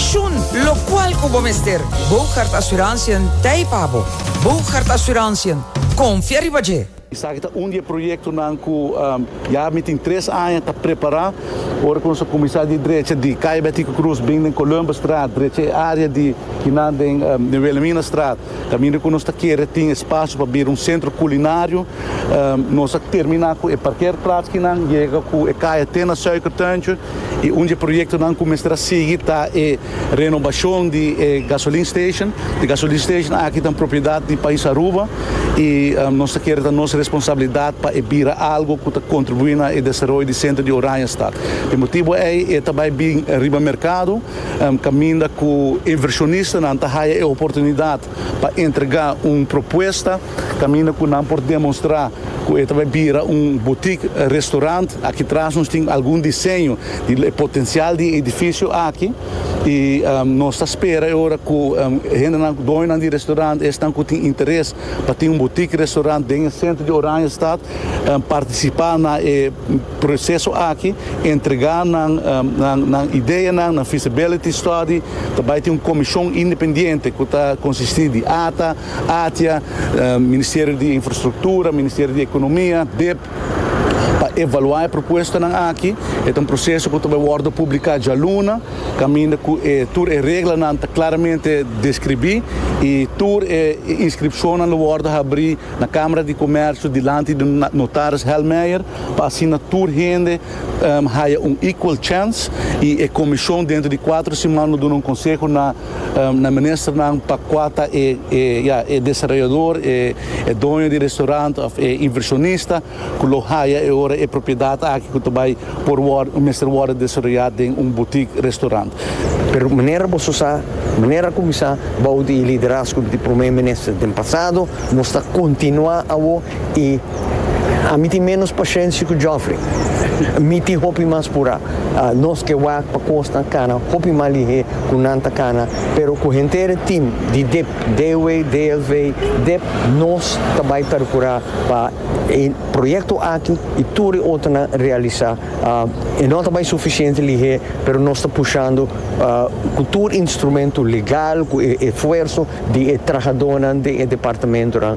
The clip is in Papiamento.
Shun locual cu bo mester. Boogaard Assurantiën t'ei pa bo. Boogaard Assurantiën, confia riba dje! Esaki ta un di e proyectonan cu ya mi tin tres aña ta prepara. Ora cu nos a cuminsa di drecha di Calle Betico Cruz bin den Columbusstraat, drecha e area di kinan den Wilhelminastraat, caminda cu nos ta kere tin espacio pa bira un centro culinario. Nos a termina cu e parkeerplaats kinan, yega cu e caya te na Suikertuintje. y un dje proyectonan cu mester a sigui ta e renobacion di e gasoline station. E gasoline station aki ta propiedad di Pais Aruba y nos ta kere ta nos responsabilidad pa e bira algo cu ta contribui na e desaroyo di centro di Oranjestad. P'e motibo ey e ta bay bin riba mercado caminda cu inversionista nan ta haya e oportunidad pa entrega un propuesta. Kaminda ku nan por demonstrá ku e ta bai bira un butik restorant. Aki tras nos tin algun diseño di e potensial di e edifisio aki i nos ta spera e ora ku hendenan, doñonan di restorant esnan ku tin interes pa tin un butik restorant den e sentro di Oranjestad partisipá na e proseso aki, entregá nan nan ideanan, nan feasibility study. Ta bai tin un komishon independiente ku ta konsistí di ata. Atia, Ministerio di Infrastruktura, Ministerio di Ekonomia, dep, pa evaluá e propuestanan aki. E ta un proseso ku ta bai wòrdu publiká djaluna, kaminda ku e tur e reglanan ta klaramente deskribí i tur e inskripshonnan lo wòrdu habrí na Kamara di Komèrsio dilanti di Notaris Helmeijer pa asina tur hende haya un equal chance i e komishon dentro di kuater siman lo duna un konseho na na ministernan pa kua ta e ya e desarrollador, e e doño di restaurant of e inversionista ku lo haya e ora e propiedad aki ku ta bai por wòrdu mester wòrdu desaroyá den un butik restaurant. Pero manera boso sa, manera a kuminsá bou di e liderazgo di Prome Minister den pasado, nos ta kontinuá awo i. Ami tin ménos pashensia ku Geoffrey. Mi tin hopi mas purá. Nos ke wak pa kosnan kana hopi mas lihé ku nan ta kana, pero ku henter tin di dip, DW, DLV, dip, nos ta bai perkurá pa e proyekto aki i tur e otronan realisá. E no ta bai sufisiente lihé, pero nos ta pushando ku tur instrumentu legal, ku e esfuerso di e trahadónan den e departamentunan.